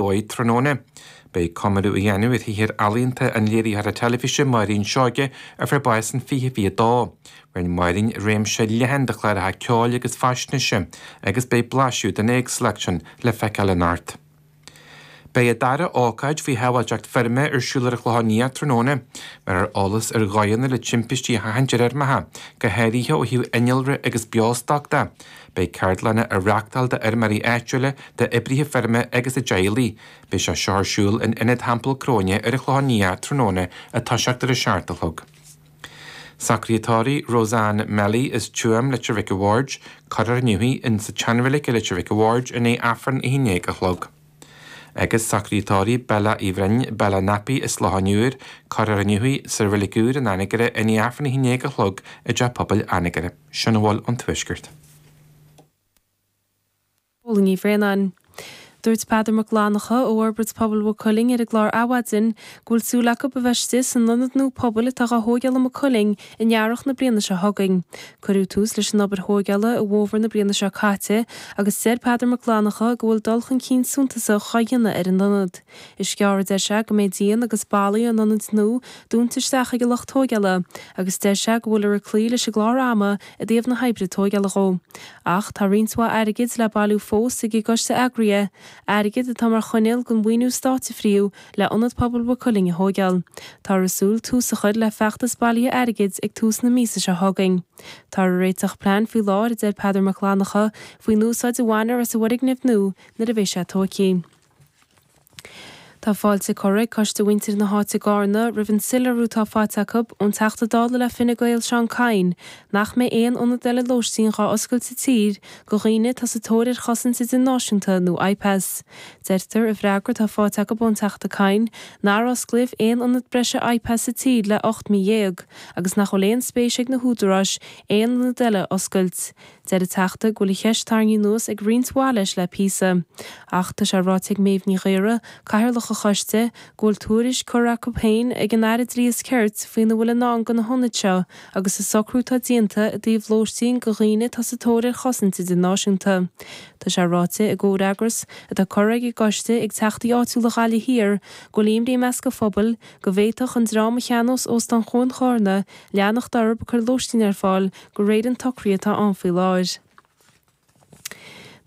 Luaith tráthnóna. Beidh comóradh á dhéanamh ar shaothar ealaíonta an léiritheora teilifíse Máirín Seoighe a fuair bás in 2022. Rinne Máirín réimse leathan de chláracha ceoil agus faisnéise agus beidh blaiseadh den éagsúlacht sin le feiceáil anocht. Beidh an dara ócáid faoi shábháilteacht feirme ar siúl ar an Chlochán Liath tráthnóna. Bhéarfar eolas ar dhóigheanna le timpistí a sheachaint ar fheirmeacha, go háirithe ó thaobh innealra agus beostoic de. Beidh ceardlanna á reachtáil d'fheirmeoirí áitiúla, d'oibrithe feirme agus a dteaghlaigh. Beidh sé seo ar siúl in Ionad Theampall Chróine ar an Chlochán Liath tráthnóna ag toiseacht ar a seacht a chlog. Socruithe tórraimh, Roseanne Melly as Tuaim Leitir Mhic a' Bhaird. Cuirfear inniu í in sa tSeanreilig i Leitir Mhic a' Bhaird i ndiaidh Aifreann a haon déag a chlog. Agus socruithe tórraimh, Bella Uí Bhroin, Bella Nappy as Loch an Iúir. Cuirfear inniu í sa Reilig Úr in Anagaire i ndiaidh Aifreann a haon déag a chlog i dTeach Pobail Anagaire. Sin a bhfuil ón Tuaisceart. Póilín Ní Bhraonáin. Dúirt Peadar Mac Fhlannchadha ó Fhorbairt Pobail Mhaigh Cuilinn ar an gclár Adhmhaidin go bhfuil súil acu a bheith istigh san ionad nua pobail atá dhá thóigeáil i Maigh Cuilinn in earrach na bliana seo chugainn. Cuireadh tús leis an obair thóigeála i bhfómhar na bliana seo caite agus deir Peadar Mac Fhlannchadha go bhfuil dul chun cinn suntasach dhá dhéanamh ar an ionad. Is gearr a deir sé go mbeidh díon agus ballaí an ionaid nua dúnta isteach ag an lucht tóigeála agus deir sé go bhfuiltear ag cloí leis an gclár ama i dtaobh na hoibre tóigeála dhó. Ach tá roinnt mhaith airgid le bailiú fós ag an gcoiste eagraithe, airgead atá mar choinníoll den mhaoiniú stáit a frítheadh le Ionad Pobail Mhaigh Cuilinn a thóigeáil. Táthar ag súil tús a chur le feachtas bailithe airgid ag tús na míosa seo chugainn. Táthar ag réiteach plean faoi láthair, a deir Peadar Mac Fhlannchadha, faoin úsáid a bhainfear as an bhfoirgneamh nua nuair a bheidh sé tóigthe. Tá fáilte curtha ag Coiste Mhuintir na hÁite i gCarna roimh an soiléiriú atá faighte acu ón Teachta Dála le Fine Gael Seán Kyne nach mbeidh aon ionad eile lóistín dhá oscailt sa tír go dhaoine atá sa tóir ar chosaint idirnáisiúnta nó IPAS. Deirtear i bhfreagra atá faighte acu ón Teachta Kyne nár osclaíodh aon ionad breise IPAS sa tír le ocht mí dhéag agus nach bhfuil aon spéis ag na húdaráis aon ionad eile a oscailt. Deir an Teachta go bhfuil an cheist tarraingthe anuas ag roinnt mhaith leis le píosa. Ach tá sé ráite ag Méabh Ní Ghaora, Cathaoirleach an choiste, go bhfuil tuairisc curtha acu féin ag an Aire Dlí is Cirt faoina bhfuil i ndán do na hionaid seo agus an socrú atá déanta i dtaobh lóistín do dhaoine atá sa tóir ar chosaint idirnáisiúnta. Tá sé ráite i gcomhfhreagras atá curtha ag an gcoiste ag Teachtaí áitiúla Ghaillimh Thiar go bhfuil imní i measc an phobail go bhféadfadh an dream a cheannós Óstán Chuan Charna leanacht orthu ag cur lóistín ar fáil go de réir an tsocraithe atá ann faoi láthair.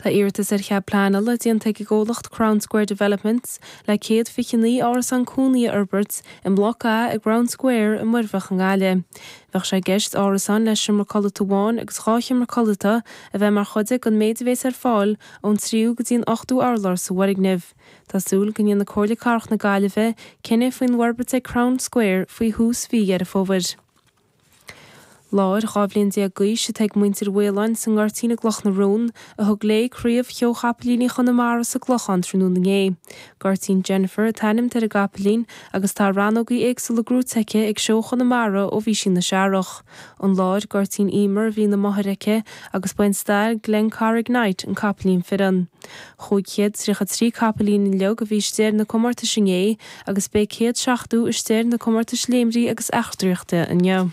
Tá iarratas ar chead pleanála déanta ag an gcomhlacht Crown Square Developments le 129 árasán cónaí a fhorbairt i mBloc A i gCrown Square i Muirbheach i nGaillimh. Bheadh sé i gceist árasáin le seomra codlata amháin agus dhá sheomra codlata a bheith mar chuid den méid a bhéas ar fáil ón tríú go dtí an ochtú urlár sa bhfoirgneamh. Tá súil go ndéanfaidh Comhairle Cathrach na Gaillimhe cinneadh faoin bhforbairt ag Crown Square faoi thús mhí Dheireadh Fómhair. Láir 12 bhliain d'aois atá ag muintir Mhaoláin sa nGoirtín i gCloch na Rón, a thug léi craobh sheó Chapaillíní Chonamara sa gClochán tráthnóna inné. Goirtín Jennifer atá ainmnithe ar an gcapaillín agus tá rannógaí éagsúla gnóite aici ag seó Chonamara ó bhí sí ina searrach. An láir Goirtín Emer a bhí ina máthair aici agus ba é an stail Glencarrig Knight an capaillín fireann. Chúig chéad tríocha trí capaillín uilig a bhí istigh ar na comórtais inné, agus beidh céad seachtó istigh ar na comórtais léimrí agus eachtraíochta inniu.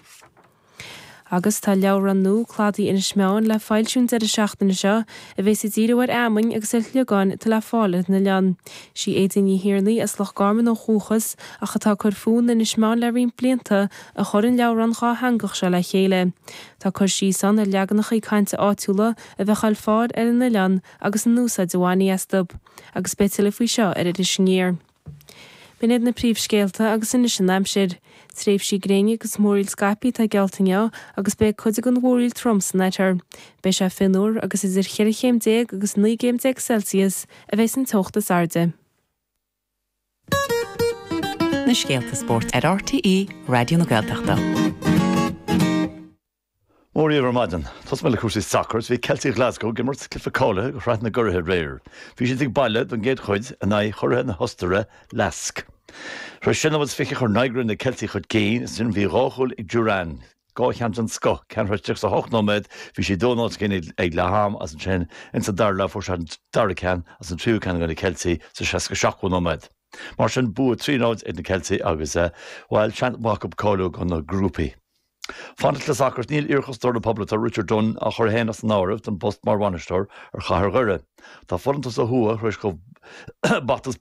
Agus tá leabhrán nua, Cladaí Inis Meáin, le foilsiú an deireadh seachtaine seo, a bheas ag díriú ar fheamainn agus ar shliogáin atá le fáil ar an oileán. Sí Aedín Ní Thiarnaigh, as Loch Garman ó dhúchas, ach atá ag cur fúithi in Inis Meáin le roinnt blianta, a chuir an leabhrán dhátheangach seo le chéile. Tá cur síos ann ar leaganachaí cainte áitiúla a bheadh le fáil ar an oileán agus an úsáid a bhainfí astu, agus beidh tuilleadh faoi seo ar Iris Aniar. B'in iad na príomhscéalta agus anois an aimsir. Tréimhsí gréine agus múraíl scaipthe atá geallta inniu agus beidh cuid den mhúraíl trom san oirthear. Beidh sé fionnuar agus idir cheithre chéim déag agus naoi gcéim déag Celsius a bheas an teocht is airde. na scéalta spóirt ar RTÉ Raidió na Gaeltachta. Mora dhíbh ar maidin. Tosóidh mé le cúrsaí sacair is bhí Ceiltigh Ghlaschú ag imirt cluiche cáilithe do Shraith na gCuraithe aréir. Bhí siad ag baile don gcéad chuid in aghaidh churaithe na hOstaire, LASK. Tar éis sé nóiméad is fiche chuir Nygren na Ceiltigh chun cinn is ansin bhí dhá chúl ag Durán, dhá cheann den scoth, ceann tar éis tríocha is a hocht nóiméad, bhí siad dó náid chun cinn ag leath-am is ansin ins an dara leath fuair sé an dara ceann is an tríú ceann do na Ceiltigh sa seasca a seachtú nóiméad. Mar sin bua trí náid ag na Ceiltigh agus, bhail, seans maith acu cáiliú do na grúpaí. Fanacht le sacar, Níl iarchosantóir na Poblachta Richard Dunne á chur féin as an áireamh don phost mar bhainisteoir ar Chathair Dhoire. Tá folúntas ó thuaidh tar éis dóibh bata is